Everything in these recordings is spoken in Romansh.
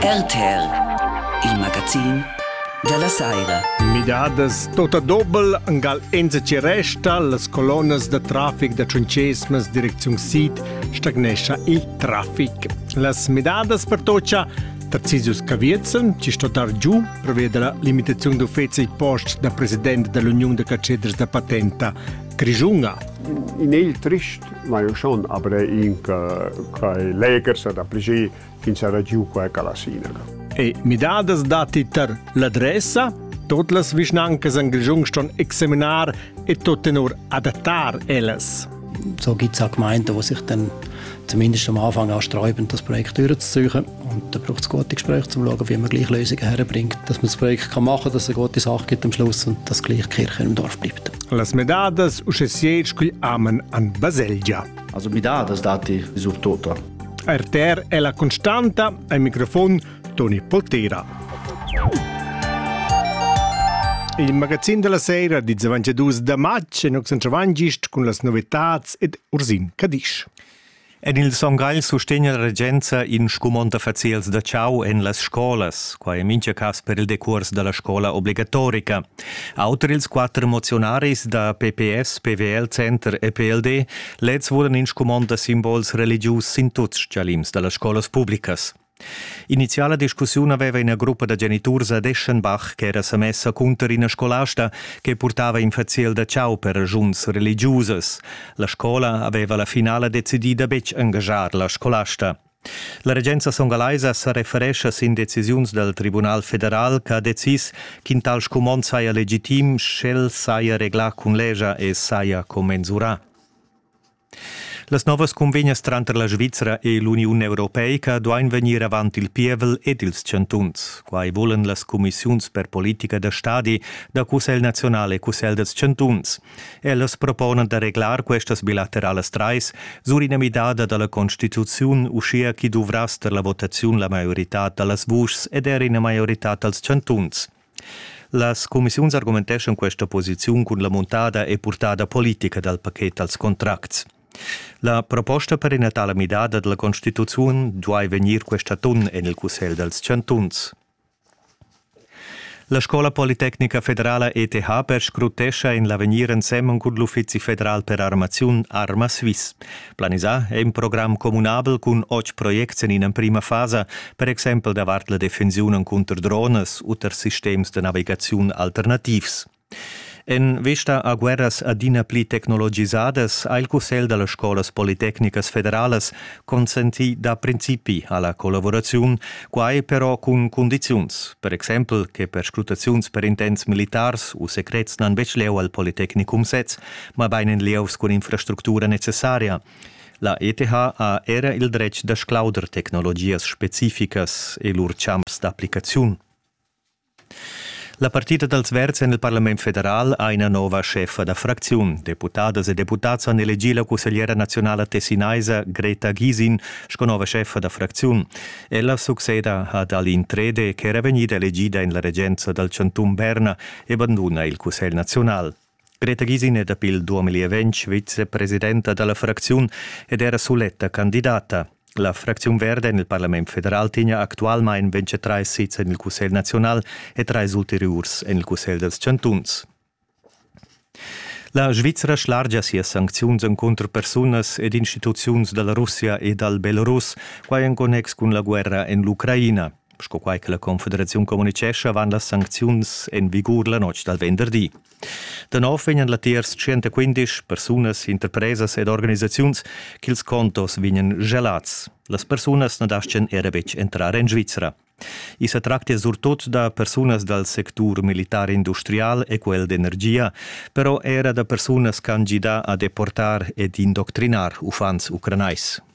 RTL, il magazin della saira. Midadas tota dobel angal enza ci resta las colonas da trafic da Ciuncesmas direcziun sid stagnescha il traffic. Las midadas per tocia Tarzisius Caviezen ci sto dar giù per via della limitazione d'uffizi post da presidente dell'Unione de Cacedres da Patenta Grischunga. In il trist, ma io son avrei in quai legers ad appliger fin sarà giù quai alla sinaga. E midadas dati tar l'adressa? Tot las vischnancas an Grischung ston examinar e tot tenor adattar ellas. So gibt es auch Gemeinden, die sich dann zumindest am Anfang ansträuben, das Projekt durchzusuchen. Und da braucht es gute Gespräche, um zu schauen, wie man gleich Lösungen herbringt. Dass man das Projekt kann machen kann, dass es eine gute Sache gibt am Schluss und dass gleich Kirche im Dorf bleibt. Las medadas usche siec cugl amen an baselgia. Also medadas dati sur tota. RTR è la costanta, al microfon Toni Poltera. Il magazzin della sera di 92 da matg è nos centravangiest cun las novetats ed Ursin Cadisch. En il Son Gagl sustegna la regenza in scumond da faziels da chau en las scolas. Quai è mintga cas per il decurs da la scola obligatorica. Auter ils quatter moziunaris da PPS, PWL, Center e PLD leds vulan in scumond da simbols religius sin tuts stgalims da las scolas publicas. Iniziala discussiun aveva ina gruppa da geniturs ad Eschenbach ch'era sa messa cunter ina scolasta che purtava in faziel da chau per regiuns religiusas. La scola aveva la finala decidì da betg engaschar la scolasta. La regenza songalaisa sa referescha sin decisiuns dal Tribunal federal che ha decis ch'in tal scumond saja legitim, sch'el saja reglà cun legia e saja commensurà. Las novas cunvegnas tranter la Svizra e l'Uniun europeica duain vegnir avant il pievel ed ils chantuns. Quai vulan las cumissiuns per politica da stadi da Cussegl naziunal e Cussegl dals chantuns. Ellas proponan da reglar questas bilateralas trais sur ina midada da la constituziun, uschia ch'i duvrass tar la votaziun la maioritad da las vuschs ed er ina maioritad dals chantuns. Las cumissiuns argumenteschan questa posiziun cun la muntada e purtada politica dal paket dals contracts. La proposta per ina tala midada dalla constituziun duai vegnir quest atun en il Cussegl dals chantuns. La Scola Politecnica Federala ETH perscrutescha in l'avegnir ensemen cun l'Uffizi federal per armaziun Arma Swiss. Planisà è in program communabel cun otg projects en ina prima fasa, per exempel davart la defensiun encunter dronas u tar sistems da navigaziun alternativs. En vista a guerras adina pli tecnologisadas ha il Cussegl da las scolas politecnicas federalas consentì da principi a la collaboraziun, quai però cun cundiziuns, per exempel che perscrutaziuns per intents militars u secrets n'han betg leu al Politecnicum sez, mabain en lieus cun infrastructura necessaria. La ETH ha era il dretg da sclauder tecnologias specificas e lur champs d'applicaziun. La partita dals verds en il Parlament federal ha ina nova scheffa da fracziun. Deputadas e deputads han elegì la cussegliera nazionala tessinaisa Greta Gisin sco nova scheffa da fracziun. Ella succeda ad Aline Trede, ch'era vegnida elegida en la regenza dal chantun Berna e banduna il cussegl nazional. Greta Gisine dapi il 2020 vicepresidenta da la fracziun ed era suletta candidata. La fracziun verde en il Parlament federal tegna actualmain 23 sits en il Cussegl naziunal e trais ulteriurs en il Cussegl dals chantuns. La Svizra schlargia sias sancziuns encunter persunas ed instituziuns da la Russia e dal Belarus, quai en connex cun la guerra en l'Ucraina. sco quai che la Confederaziun communitgescha avant las sancziuns en vigur la notg dal venderdi. Da nov vegnan latiers 115 persunas, interpresas ed organisaziuns ch'ils contos vegnan gelats. Las persunas na dastgan era betg entrar en Svizra. I sa tractia surtut da persunas dal sectur militar industrial e quel d'energia, però era da persunas ch'han gidà a deportar ed indoctrinar uffants ucranais.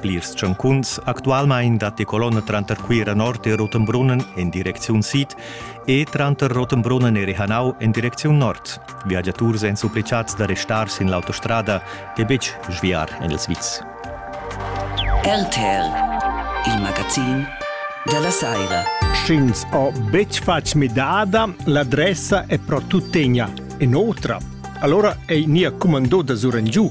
Plirs tschancuns actualmein datti colonna tranter Cuira Nord e Rotenbrunnen en direcziun sid e tranter Rotenbrunnen e Rihanau en direcziun nord. Viagiaturs èn supplicads da restar sin l'autostrada e betg sviar en il Sviz. RTL, il magazin della Saira. Sch'ins ha betg fatg midada, l'adressa è però tuttegna in'otra. Allora è nia comandò da sur giù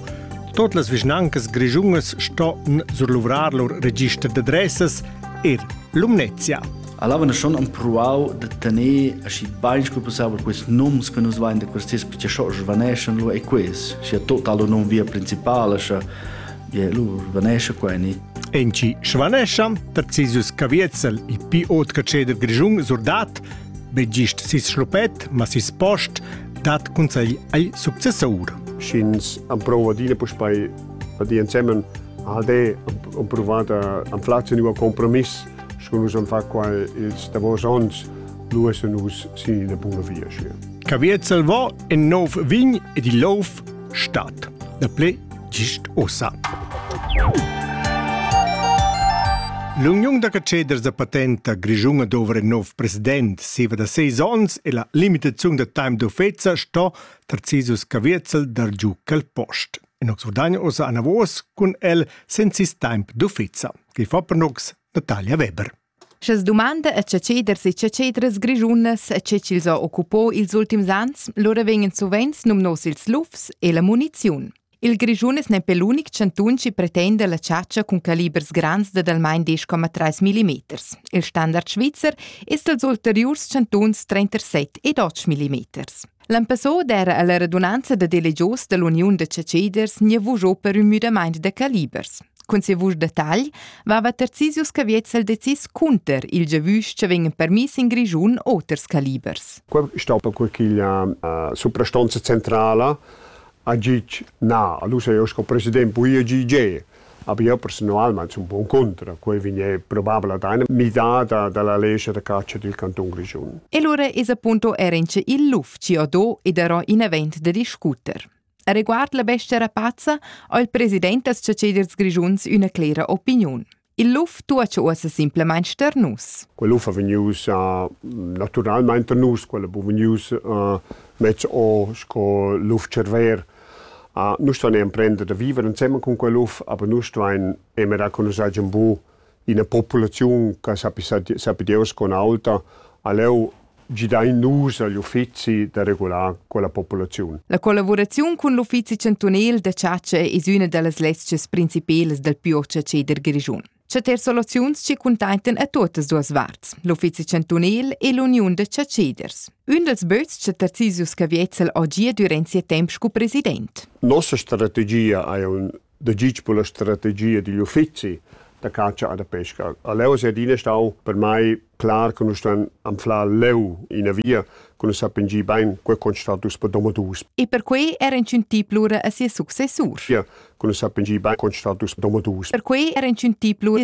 Tot las vischnancas grischunas ston surluvrar lur register d'adressas er Lumnezia. Allora noi schon empruau de tenere aschi bene come possibile questi nomi che nos vanno da questi perché schon svaneschan lo e questi, sia total non via principale, sia je lo svanesce qua ni. Enci svaneschan, Tarcisius Caviezel, il più otca ceder grischun surdat, begist sis schlupet, ma sis post, dat consegl ei successor. Sch'ins emprova adina puspei di insemmen ALD ho provato am fatto un compromiss con nus am fa qua ils davos ons lu es nus sin ina buna via schi Cavier Salvò in nov vin ed il lov Stat e ple gist ossa. L'uniun da ceders da patenta grischunga dovra in nov president siva da seis ons e la limitaziun da time d'offesa sto Tarcisus Caviezel dar giu quel post. In ox ordagno osa anavos cun el sensis temp d'offesa, che fa per nox Natalia Weber. Scha's dumanda a chatscheders e chatschedras grischunas e che chi'ls ho occupò ils ultims ans, lura vegnan suvenz numnos ils lufs e la muniziun. Il Grischun es nempe l'unic chantun chi pretenda la chatscha cun calibers grands dad almain 10,3 mm. Il standard svizzer es dals ulteriurs chantuns 37 ed 8 mm. L'episod era alla radunanza da delegios dall'Uniun da ceceders gnavugiò per ün müdamaint da calibers. Cun ses vusch da tagl vava Tarzisius Caviezzel decis cunter il giavüsch che vegn permiss in Grischun oters calibers. Quel è stato quella uh, soprastanza centrala a Gic na. Allora io sco presidente poi a GG Aber io personalment sun bon contra. Quei vegné probabel ad eine midada dalla lescha da caccia dil canton Grischun. E allora es appunto era in ce il l'ufficio do ed ero in event da discuter. A riguard la bestia rapazza ha il president das Ceders Grischuns üna clera opiniun. Il luf tu ha uossa simplement ster nus. Quel luf ha vegnius uh, naturalmente nus, quel ha vegnius uh, mezz o sco luf cerver Uh, nus stuain emprender da viver ensemen cun quel uff, aber nus stuain emerar con nus hagian bu ina populaziun che sappi, sappi Deus con auta, aleu gidain nus agl uffizi da regular quella populaziun. La collaboraziun cun l'uffizi chantunel da chatscha es üna da las lezchas principelas dal più ceder grischun. chatter soluziuns che cuntentan a tuottas duas varts, l'uffizi chantunil e l'uniun da chatschiders. Ün dels böts cha Tarzisius Caviezel ho gia durant sia temp sco president. Nossa strategia è un degig per la strategia digl uffizi da catscha e da pesca. A Leo sia adina stau per mai clar che nus stan anflar leu ina via che nus sappian gi bein quei constatar dus per domadus. E per quei era incintì plura a ses successur. Ja, che nus sappian gi bein constatar dus per domadus. Per quei era incintì plura.